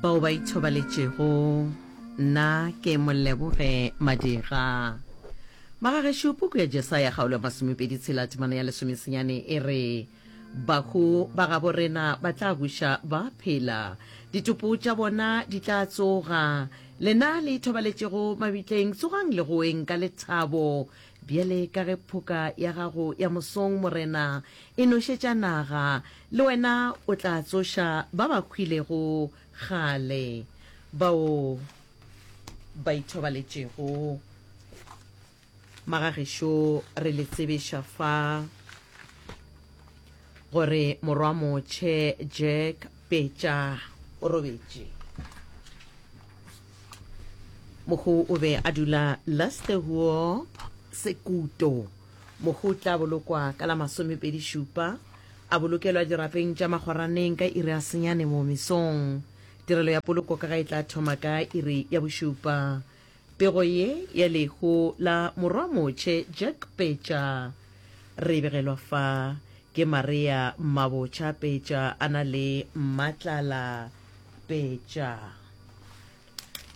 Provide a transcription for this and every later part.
bao ba ithobaletšego nna ke Moleboge Madira. Magagešo puku ya Jesaya kgaolo ya masomepedi tshela temana ya lesomesenyane e re, Bahu ba gabo rena ba tla buša ba phela, ditopo tša bona di tla tsoga. Lena le ithobaletšego mabitleng, tsogang le goeng ka lethabo, Bjale ka ge phoka ya gago ya mosong, Morena, e nošetša naga, le wena o tla tsoša ba ba hwilego kgale, bao ba ithobaletšego. Magagešu, re le tsebiša fa. Gore morwa motšhe Jack Petša o robetše. Mohu o be a dula Lastehuop, Sekuto. Mohu o tla bolokwa ka la masomepedi šupa, a bolokelwa dirapeng tša magoraneng ka iri ya senyane mo mesong. Tirelo ya poloko ka ga e tla thoma ka iri ya bošupa. Pego ye ya lehu la Morwa Motšhe Jack Pecha re e begelwa fa ke Maria Mmabocha Pecha a na le Mmatlala Pecha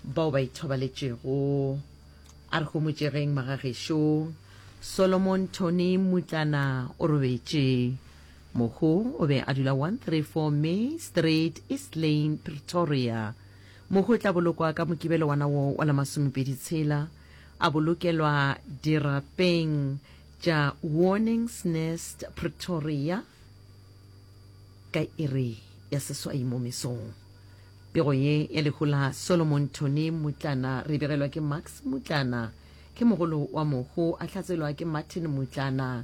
bao ba ithobaletšego. A re homotšegeng magagešo. Solomon Tony Mmutlana o robetše. Mohu o be a dula 134 May Street, East Lane, Pretoria. Mohu o tla bolokwa ka Mokibelo wana wo wa la masomepedi tshela, a bolokelwa dirapeng tša Warnings Nest Pretoria ka iri ya seswai mo mesong. Pego ye ya lehu la Solomon Tony Mutlana re begelwa ke Max Mutlana, ke mogolo wa mohu, a hlatselwa ke Martin Mutlana,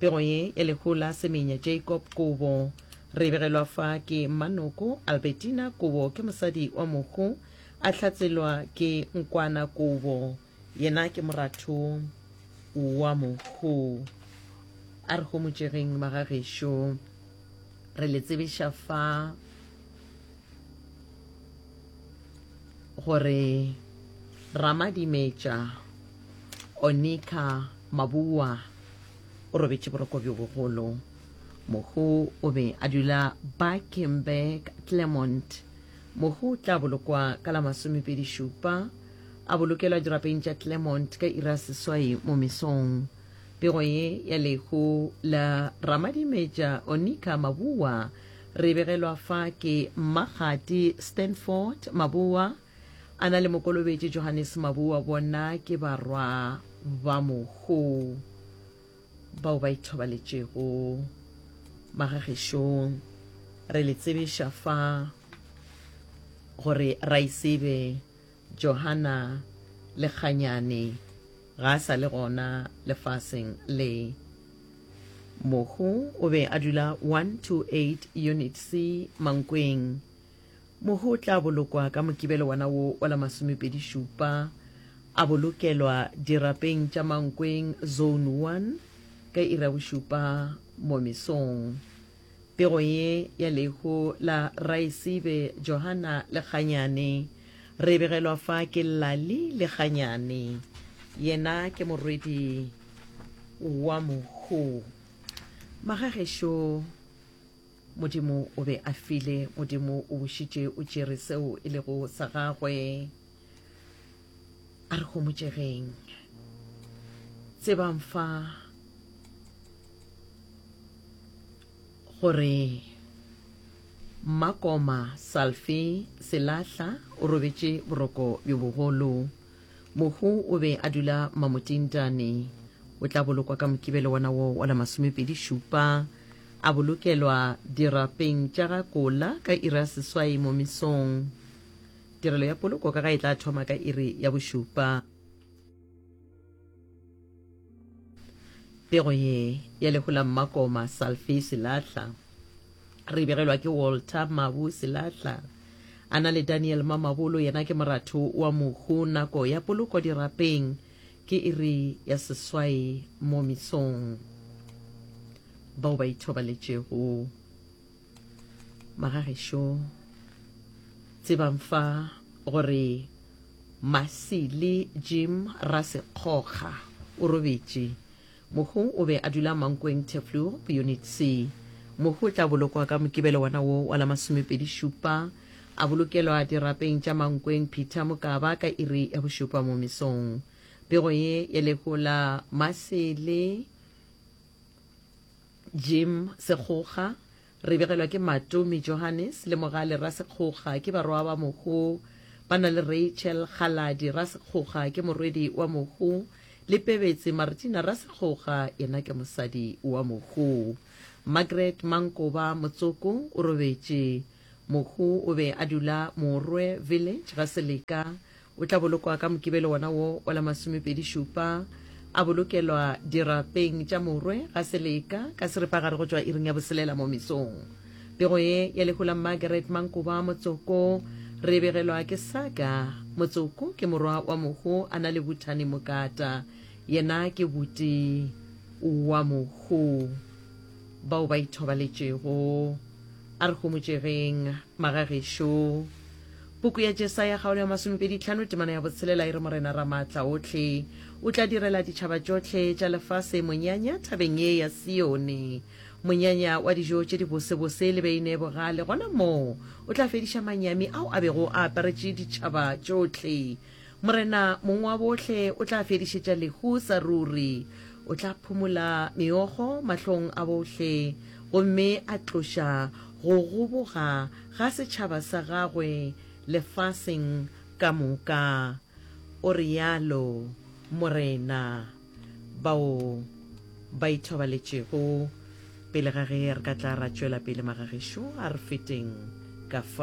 Pego ye e lehola Semenya Jacob Kobo. Re begelwa fa ke Mmanoko Albertina Kobo ke mosadi wa Mohu, a hlatselwa ke Nkwana Kobo. Yena ke moratho wa Mohu. A re homotšegeng magagešo. Re le tsebiša fa. gore Ramadimetša Onika Mabua o robetše boroko bjo bogolo mohu o be a dula Bakenberg Clermont mohu o tla bolokwa ka la masomepedi šupa a bolokelwa dirapeng tša Clermont ka ira seswai mo mesong pego ye ya lehu la Ramadimetša Onika Mabua Re begelwa fa ke Mmakgati Stanford Maboa, a na le mokolobetši Johannes Maboa, bona ke barwa ba mohu bao ba ithobaletšego magagešong. Re le tsebiša fa gore Raisibe Johana le kganyane ga a sa le gona lefaseng le. Mohu o be a dula 128 Unit C Mankweng. Mohu o tla bolokwa ka Mokibelo wona wo wa la masomepedi šupa, a bolokelwa dirapeng tša Mankweng Zone 1 ka iri ya bošupa mo mesong. Pego ye ya lehu la Raesibe Johana Lekganyane re e begelwa fa ke Lali Lekganyane. Yena ke morwedi wa mohu. Magagešo Modimo o be a file, Modimo o bušitše o tšere seo e lego sa gagwe. a re homotšegeng tsebang fa gore makoma salfe selahla o robetše boroko bjo bogolo mohu o be a dula mamotintane o tla bolokwa ka mokibelo wona wo wa la masomepedi šupa a bolokelwa dirapeng tša ga kola ka ira seswai mo mesong Tirelo ya poloko ka ga e tla thoma ka iri ya bošupa. Pego ye ya lehu la Mmakoma Salfi Silahla re begelwa ke Walter Mabu Silahla. A na le Daniel Mamabolo yena ke moratho wa mohu. Nako ya poloko dirapeng ke iri ya seswai mo misong. Bao ba ithobaletšego. Magagešo, tsebang fa gore Masili Jim Rasekgokga o robetše. Mohu o be a dula Mankweng Teflur, Unit C. Mohu o tla bolokwa ka Mokibelo wona wo wa la masomepedi šupa, a bolokelwa dirapeng tša Mankweng Peter Mokaba ka iri ya bošupa mo mesong. Pego ye ya lehu la Masili Jim Sekgoga, Re begelwa ke Matomi Johannes le Mogale Rasekgoga ke barwa ba Mohu, ba na le Rachel Kgaladi Rasekgoga ke morwedi wa Mohu le Pebetsi Martina Rasekgoga yena ke mosadi wa Mohu. Margaret Mankoba Motsoko o robetše. Mohu o be a dula Moorwe Village ga Seleka. O tla bolokwa ka Mokibelo wona wo wa la masomepedi šupa. A bolokelwa dirapeng tša Moorwe ga Seleka ka seripagare go tšwa iring ya boselela mo mesong. Pego ye ya lehu la Margaret Mankoba Motsoko re e begelwa ke Saga. Motsoko ke morwa wa Mohu a na le Buthani Mokata. Yena ke buti wa Mohu. Bao ba ithobaletšego, a re homotšegeng, magagešo. Puku ya Jesaya kgaolo ya masomepedi tlhano temana ya botshelela e re Morena Ramaatlaohle o tla direla ditšhaba tšohle tša lefase monyanya thabeng ye ya Sione, monyanya wa dijo tše dibosebose le beine e bogale. Gona moo o tla fediša manyami ao a bego a aparetše ditšhaba tšohle. Morena Mong wa Bohle o tla fedišetša lehu sa ruri. O tla phumola meokgo mahlong a bohle gomme a tloša go goboga ga setšhaba sa gagwe lefaseng ka moka, o realo Morena. Bao ba ithobaletšego. Pele ga ge re ka tla ra tšwela pele, magagešo, a re feteng ka fa.